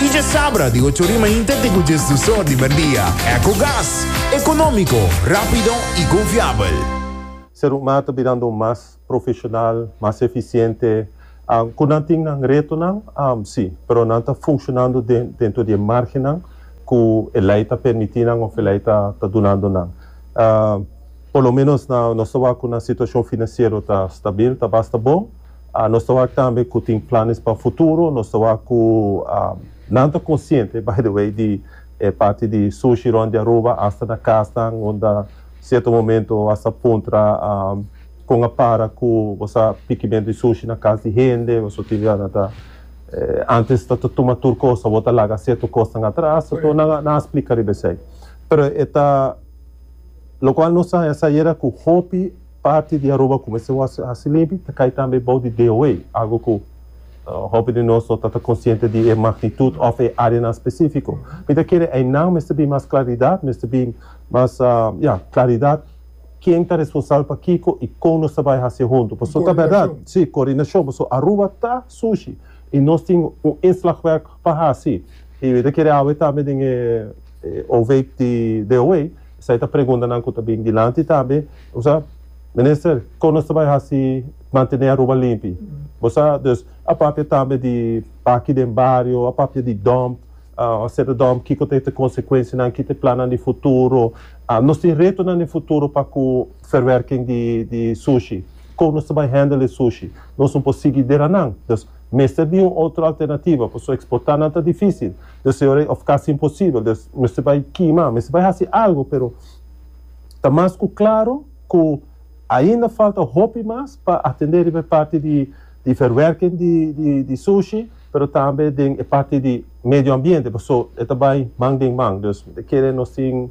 Y dje sabra di ocho rima inter te cu dje sdusor di merdia. Ecogas. Economico, rapido y confiabel. Serumma ta birando un mas profesional, mas eficiente. Cu nan tin nan retonan? Sí, pero nan ta funcionando dentro di e margennan cu e ley ta permiti nan of e ley ta dunando nan. Por lo menos nos ta wak cu nan situacion financiero ta stabil, ta basta bon. Nos ta wak tambe ku tin planes pa futuro. Nos ta wak ku nan ta konsiente, by the way, di e parti di sushi rònt di Aruba asta na kasnan unda sierto momento bo a sa puntra kon a para ku bo sa pikimentu di sushi na kas di hende. Bo so tin di nan ta antes ta tuma tur kos, awor ta laga sierto kosnan atras. Koreto. Nan a nan a splika riba esei. Pero e ta lokual nos a haña sa yera ku hopi. Parti di Aruba ku mester wòrdu hasi limpi ta kai tambe bou di DOA, algu ku hopi di nos no ta ta konsiente di e magnitut òf e áreanan spesífiko. Mi ta kere einan mester bin mas klaridat, mester bin mas, ya, klaridat ken ta responsabel pa kiko i kon nos ta bai hasi e huntu. Pasobra ta bèrdat, sí, koordinashon, pasobra Aruba ta sushi i nos tin un inslagwerk pa hasi. I mi ta kere awe tambe den e overheid di DOA. Esei ta preguntanan ku ta bin dilanti ta be. Bo sa, Minister, kon nos ta bai hasi mantené Aruba limpi? Bo sa, dus a papia tambe di aki den bario, a papia di dòmp, hoseda dòmp, kiko ta e ta konsekuensianan, ki ta e plannan di futuro. Nos tin retonan den futuro pa ku ferwerking di di sushi. Kon nos ta bai hèndel e sushi? Nos no por sigui deranan. Dus mester bin un otro alternativa, paso eksportá nan ta difísil. Des te ora of casi imposibel, des mester bay kima, mester bay haci algo, pero ta mas cu claro cu ainda falta hopi mas pa atende riba e parti di di verwerking di di di sushi, pero tambe den e parti di medio ambiente, paso e ta bay man den man, dus mi ta kere nos tin.